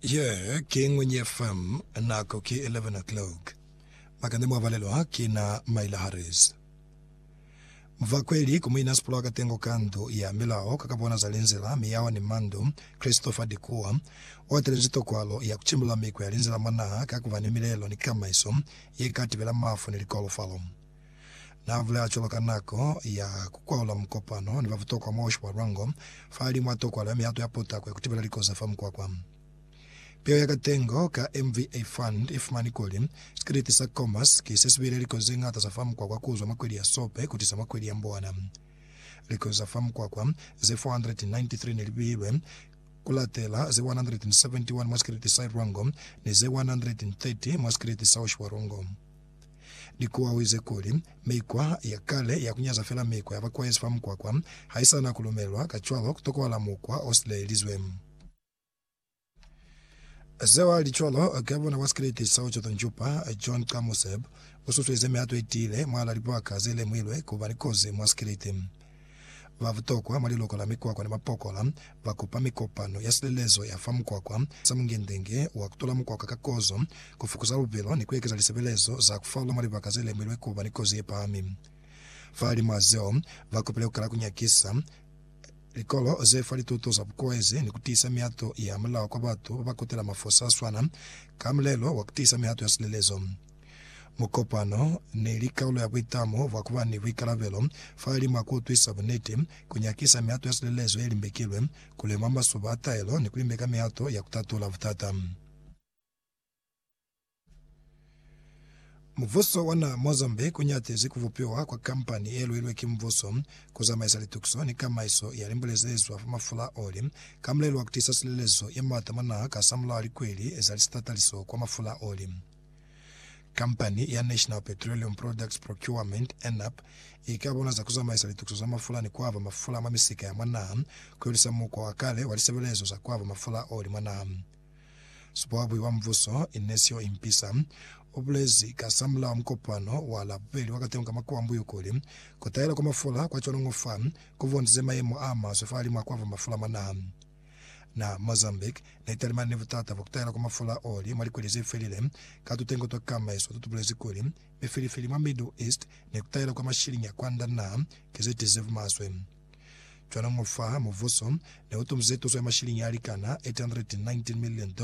Ye ki Ngwenye FM, nako ki 11 o'clock. Makande mwa balelwa ki na Myla Harris. Mvakweli ku muina sipulo akatengo ka ndu ya milao ka kabona za linzila, miyaho ni mandu, Christopher Dikuwa, uatelezi tokwalo ya kucimbula mikwa ya linzila mwa naha ka kuba ni milelo ni kamaiso ye ka tibela mafu ni likolofalo. Na bulela cwalo ka nako ya ku kwaula mukopano ni ba butokwa mwa Osho wa Lwango, fahalimu a tokwala mihato ya potako ya ku tibela likoza fa mukwakwa. Piho ya katengo ka MVA Fund i fumani kuli, Sikiliti sa Comas ki se si beile likoza ze ñata za fa mukwakwa ku zwa mwa kweli ya Sope ku tisa mwa kweli ya Mbowana. Likoza za fa mukwakwa ze 493 ne li beilwe ku latela ze 171 mwa sikiliti sa Lwango ni ze 130 mwa sikiliti sa Osho wa Lwango. Ni kuawize kuli, mikwa ya kale ya ku nyaza fela mikwa ya bakwaezi fa mukwakwa ha i sa na ku lumelwa, kacwalo ku tokohala mukwa o silaelizwe. Seo ha li cwalo, ka bona wa sikriti sa Ochoto Njupa, John Kamuseb, u susueze mihato i tiile mwal'a libaka ze lemuhilwe ku ba ni kozi mwa sikriti. Ba butokwa mwa liloko la mikwakwa ni mapokola ba kupa mikopano ya silelezo ya fa mukwakwa, sa mungengenge wa ku tula mukwakwa ka kozo, ku fukuza lubilo ni ku ekeza lisebelezo za ku falwa mwa libaka ze lemilwe ku ba ni kozi ye pahami. Fahalimw'a zeo, ba kopile ku kala ku nyakisa likolo ze fa lituto za bukoezi ni ku tiisa mihato ya mulao kwa batu ba ba kutela mafosi a swana ka mulelo wa ku tiisa mihato ya silelezo. Mukopano neli kalulo ya buitamo bwa kuba ni buikalabelo fahalimu a kuutwisa buniti, kunyakisa mihato ya silelezo yelimbekilwe, kulemwa masuba a taelo, ni kulimbeka mihato ya kutatula butata. Mubuso wa naha Mozambique unyatizi kubupiwa kwa kampani yeluilwe ki mubuso kuzamaisa litukiso ni kamaiso ya limbule zeezwa fa mafula a oli, ka mulelo wa kutisa silelezo yemaata mwa naha kasamulaho likweli za lisitataliso kwa mafula a oli. Kampani ya National Petroleum Products Procurement, NPPP, i ka bona za ku zamaisa litukiso za mafula ni ku aba mafula mwa misika ya mwa naha ku hulisa mukwa wa kale wa lisebelezo za ku aba mafula o li mwa naha. Supohabui wa Mbuso, Inecio Impisa, u bulezi kasamulaho mukopano wa Labubeli wa Katengo ka Makuwa Mbuyu kuli, Ku tahela kwa mafula kwa cwalo ngo fa ku bondize mayemo a maswe fahalimw'a ku aba mafula mwa naha. Na Mozambique ne talimani ni butata bwa kutahela kwa mafula a oli mwa likweli zefelile. Ka tutengo twa kamaiso tutubulezi kuli, mifilifili mwa Middle East ni kutahela kwa mashiliñi a kwanda naha ki zetize bumaswe. Cwalo ngo fa, mubuso ne utumize tuso ya mashiliñi a likana $819 million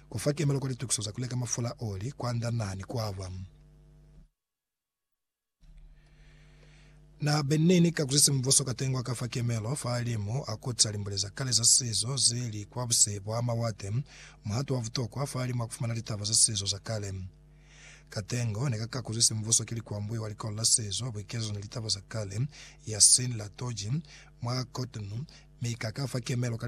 ku fa kemelo kwa litukiso za kuleka mafula a oli kwanda naha ni kwaba. Na benne ni ka kuzisa mubuso ka tengwa ka fa kemelo fa limu a kutisa limbule za kale za sizo ze li kwa buse bwa mawate, muhato wa butokwa fa limu a kufumana litaba za sizo za kale. Ka tengo ne ka ka kuzisa mubuso ki likwambuyo wa Likolo la Sizo, Buikezo ni Litaba za Kale, Yasin Latoji, mwa Cotonou, mi ka ka fa kemelo ka